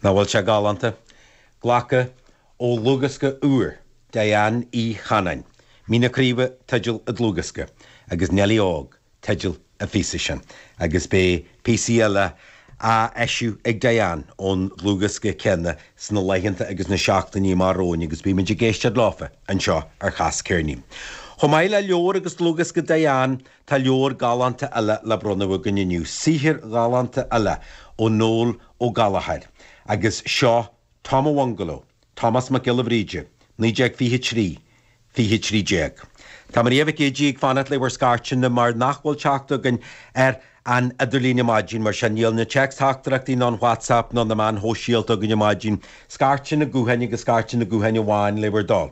Nach bhfuil sé galánta? Glactha ó dhlúthdhiosca úr Diane Ní Chanainn, Mín na Craoibhe teideal an dlúthdhiosca, agus Neillí Óg teideal an phíosa sin, agus beidh píosaí eile á eisiú ag Diane ón dlúthdhiosca céanna sna laethanta agus na seachtainí amach romhainn agus beimid ag éisteacht leofa anseo ar Chas Ceirnín. Chomh maith le leabhar agus dlúthdhiosca Diane, Tá leabhar galánta eile le bronnadh againn inniu, saothar galánta eile ó Noel Ó Gallchóir, agus seo Tom an Bhungaló, Tomás Mac Giolla Bhríde, 1923, 2013. Tá Maria Mhic Géidigh ag fanacht le bhur scairteanna mar nach bhfuil teacht againn ar an idirlíon ar maidin, mar sin níl na téacsteachtaireachtaí ná an WhatsApp ná na meáin shóisialta againn ar maidin. Scairteanna gutháin agus scairteanna gutháin amháin le bhur dtoil.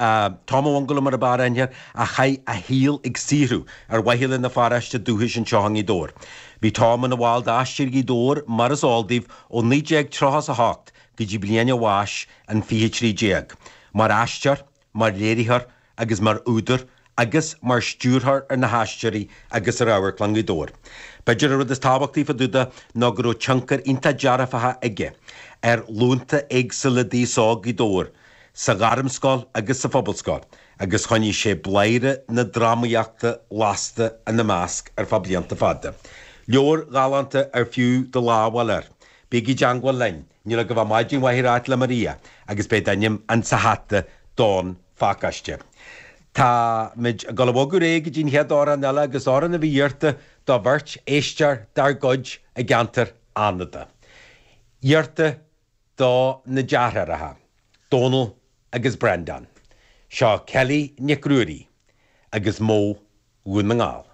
Tom an Bhungaló mar a b'fhearr aithne air, a chaith a shaol ag saothrú ar mhaithe lena pharáiste dúchais anseo i nGaoth Dobhair. Bhí Tom ina bhall d'Aisteoirí Ghaoth Dobhair, mar is eol daoibh, ó 1938 go dtí bliain a bháis in 2013. Mar aisteoir, mar léiritheoir agus mar údar agus mar stiúrthóir ar na hAisteoirí agus ar Amharclann Ghaoth Dobhair. B'fhéidir an rud is tábhachtaí fá dtaobh de ná go raibh tionchar iontach dearfacha aige ar ghlúnta éagsúla d'aos óg Ghaoth Dobhair, sa Ghairmscoil agus sa Phobalscoil, agus choinnigh sé bladhaire na drámaíochta lasta ina measc ar feadh blianta fada. Leabhar galánta ar fiú do lámh a fháil air. Bígí i dteangmháil linn! Níl agaibh ach maidin mhaith a ráit le Maria agus beidh d'ainm insa hata don phacáiste. Tá muid ag dul a bhogadh ar aghaidh go dtí an chéad amhrán eile agus amhrán a bhí iarrta do bheirt éisteoir dár gcuid i gceantar Fhánada. Iarrta do na deartháireacha, Dónal agus Breandán. Seo Kelly Nic Ruairí agus Mo Dhún na nGall.